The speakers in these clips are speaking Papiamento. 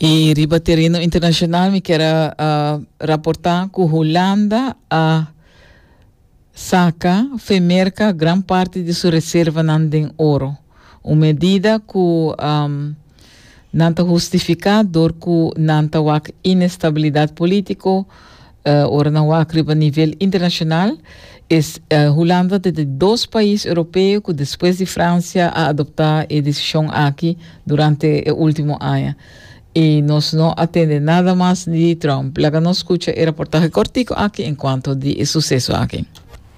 I riba terreno internacional mi quiero uh, reportar cu Holanda a uh, saca femerca gran parte de su reserva nan den oro. Un medida cu um, nan ta justifica door cu nan ta wak inestabilidad politico Ora nan wak riba nivel internashonal, es Hulanda ta di dos pais Europeo ku despues di Fransia a adoptá e desishon aki durante e último aña. I nos no a tende nada mas di Trump. Laga nos skucha e raportahe kòrtiku aki en kuanto di e suseso aki.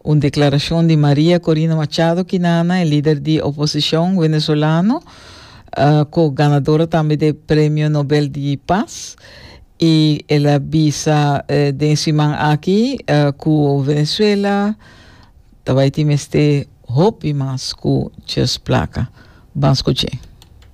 Un declaracion di Maria Corina Machado Quinana, e lider di oposicion venezolano, cu ganadora tambe d'e Premio Nobel di Paz, y el a bisa den e siman aki cu Venezuela ta bay tin mester hopi mas cu djes placa. Ban scuch'e.